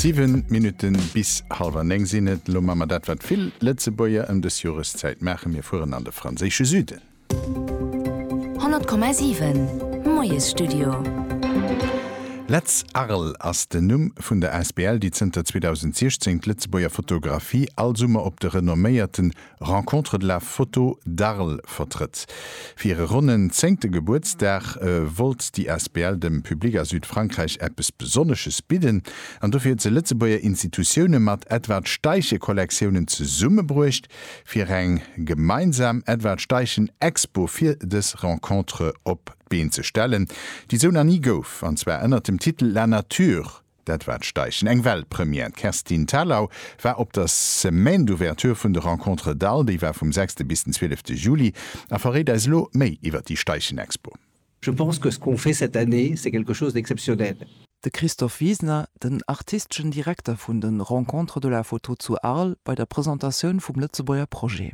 Siwen Minutten bis halwer néng sinn et. Elo man mer dat wat vill Lëtzebuerger ëm dës Joreszäit maachen, mir fueren an de franséische Süden. 100,7 Moiesstudio. Letz Arles ass den Numm vun der Asbl, déi zënter 2016 d'Lëtzebuerger Fotografie all Summer op de renomméierten Rencontre de la Photo d'Arles vertrëtt. Fir hire ronnen zéngte Gebuertsdag wollt déi asbl dem Public a Südfrankräich eppes Besonnesches bidden an dofir huet se Lëtzebuerger Institutioune mat Edward Steichen Kollektioune zesummebruecht fir eng gemeinsam Edward Steichen Expo fir dës Rencontre op d'Been ze stellen, déi sou nach ni gouf, an zwar ënnert dem Titel La nature, Dat war d'Steichen, eng Weltpremière. D'Kerstin Thalau war op der Semaine d'ouverture vun de Rencontres d'Al, déi war vum sechste bis den zwielefte Juli, a verréit eis elo méi iwwer déi Steichen-Expo. Je pense que ce qu'on fait cette année, c'est quelque chose d'exceptionnel. De Christophe Wiesner, den artisteschen Direkter vun de Rencontres de la Photo zu Arles, bei der Presentatioun vum Lëtzebuerger Projet.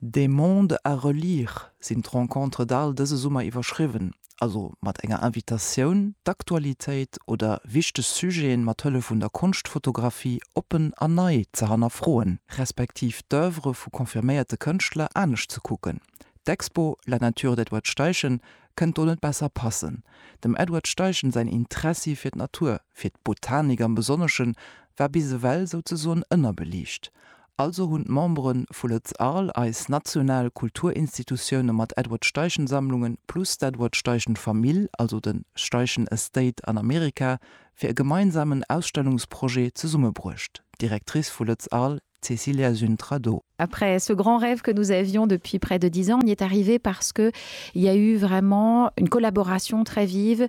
De monde à relire sinn d'Rencontres d'Arles dëse Summer iwwerschriwwen, also mat enger Invitatioun, d'Aktualitéit oder wichteg Sujeten mat Hëllef vun der Konschtfotografie oppen an nei ze hannerfroen, respektiv d'Oeuvre vu confirméierte Kënschtler anescht ze kucken. D'Expo La nature d'Edward Steichen kënnt do net besser passen. Dem Edward Steichen säin Interessi fir d'Natur, fir d'Botanik am Besonneschen, war bis ewell souzesoen ënnerbeliicht. Also hunn d'Membere vu Lëtz Arles, eis national Kulturinstitutioune mat Edward Steichen Sammlungen, plus d'Edward Steichen Famill, also de Steichen Estate an Amerika, fir e gemeinsamen Ausstellungsprojet zesummebruecht, Directrice vu Lëtz Arles, Cecilia Züntra-Do. Après ce grand rêve que nous avions depuis près de dix ans, on y est arrivé parce qu'il y a eu vraiment une collaboration très vive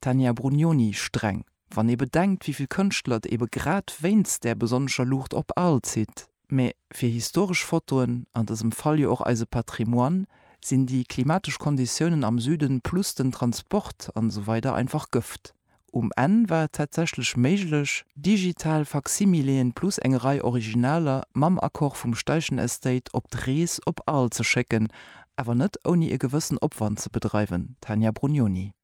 Tania Brugnoni, Streng, wann ee bedenkt wéi vill Kënschtler et ebe grad wéinst där besonnescher Luucht op Aal zitt. Mä fir historesch Fotoen, an dësem Fall jo och eise Patrimoine, sinn déi klimatesch Konditiounen am Süden plus den Transport an esou weider einfach Gëft. Um Enn war et tatsächlech méiglech, digital Faksimileen plus eng Rei Originaler mam Accord vum Steichen Estate op d'Rees op Aal ze schécken, awer net ouni e gewëssen Opwand ze bedreiwen, Tania Brugnoni.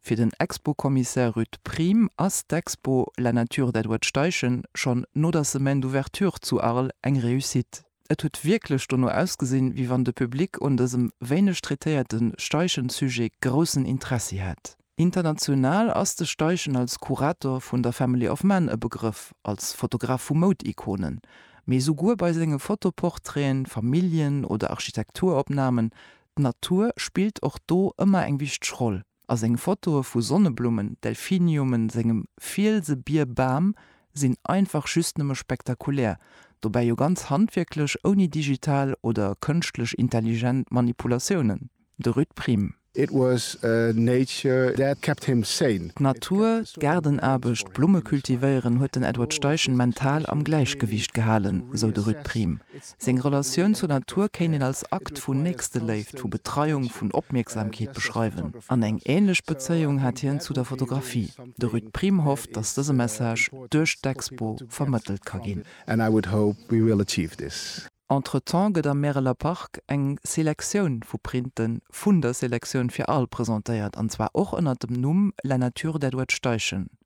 Fir den Expo-Kommissär Ruud Priem ass d'Expo La Nature d'Edward Steichen schonn no der Semaine d'Ouverture zu Arles eng Réussite. Et huet wierklech dono ausgesinn, wéi wann de Public un dësem wéineg traitéierte Steichen-Sujet groussen Interessi hätt. International ass de Steichen als Kurator vun der Family of Man e Begrëff, als Fotograf vu Moud-Ikonen, mee souguer bei senge Fotoportraite, Familljen oder Architekturopnamen D'Natur spillt och do ëmmer eng wichteg Roll a seng Fotoe vu Sonneblummen, Delphiniumen, sengem Fielse, Bier, Bam sinn einfach just nëmme spektakulär, dobäi jo ganz handwierklech, ouni digital oder kënschtlech intelligent Manipulatiounen. De Ruud Priem. It was nature that kept him sane. D'Natur, d'Gaardenaarbecht, d'Blumme cultivéieren huet den Edward Steichen mental am Gläichgewiicht gehalen, sou de Ruud Priem. Seng Relatioun zur Natur kéint een als Akt vun Nächsteléift, vu Betreiung, vun Opmierksamkeet beschreiwen. An eng änlech Bezéiung hat hien zu der Fotografie. De Ruud Priem hofft, datt dëse Message duerch d'Expo vermëttelt ka ginn. Entretemps gëtt am Märeler Park eng Selektioun vu Printen vun der Selektioun fir Al presentéiert, an zwar och ënnert dem Numm La nature d'Edward Steichen.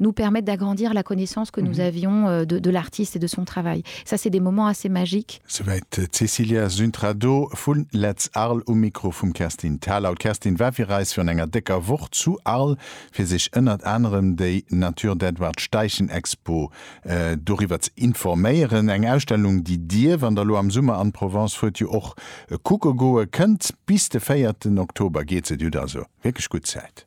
nous permettent d'agrandir la connaissance que nous avions de de l'artiste et de son travail. Ça c'est des moments assez magiques. Souwäit d'Cecilia Suntrado vu Let's Arles um Mikro vum Kerstin Thalau. D'Kerstin war fir eis virun enger décker Woch zu Arles, fir sech ënnert anerem déi Natur d'Edward Steichen Expo doriwwer ze informéieren. Eng Ausstellung, déi Dir, wann Der elo am Summer an d'Provence fuert, jo och kucke goe kënnt. Bis de véierten Oktober geet se, Dir hutt also wierklech gutt Zäit.